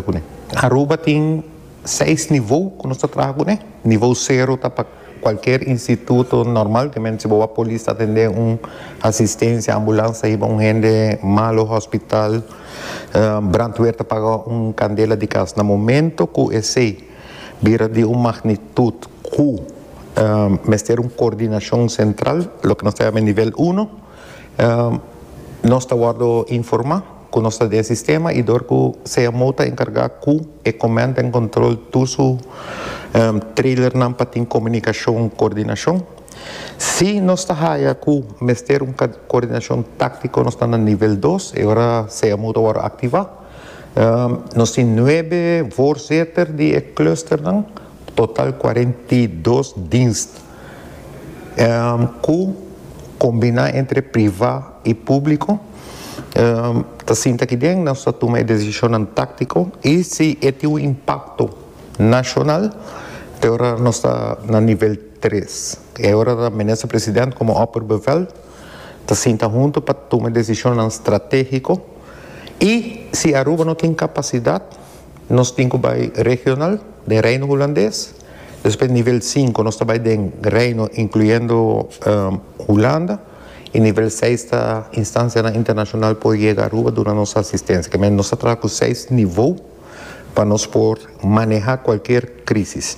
kuné. Aruba tin seis nivou ku nos ta traha kuné. Nivou sero ta pa kualker instituto normal, te men si bo a polis ta atendé un asistensia, ambulans ta hiba un hende malu hospital, brandweer ta paga un kandela di kas. Na momento ku esei bira di un magnitut ku mester un kordinashon sentral, loke nos ta yama e nivel uno. Nos ta wordo informa cu nos ta den sistema y dor cu CMO ta encarga cu e command and control tur su trailernan pa tin comunicacion y coordinacion. Si nos ta haya cu mester un coordinacion tactico nos ta na nivel dos, e ora CMO ta wordo activa. Nos tin nuebe voorzitter di e clusternan, total cuarenta y dos dienst. Ku kombiná entre privá i públiko ta sinta ki den nos ta tuma e desishonnan táktiko i si e tin un impakto nashonal te ora nos ta na nivel tres. E ora ta Minister President komo Opperbevel ta sinta huntu pa tuma e desishonnan stratégiko i si Aruba no tin kapasidat nos tin ku bai regional den Reino Hulandes. Despues nivel sinku nos ta bai den Reino incluyendo Hulanda y nivel seis ta instancianan internacional por yega Aruba duna nos asistencia. Kemey nos ta traha cu seis nivo pa nos por maneha cualkier crisis.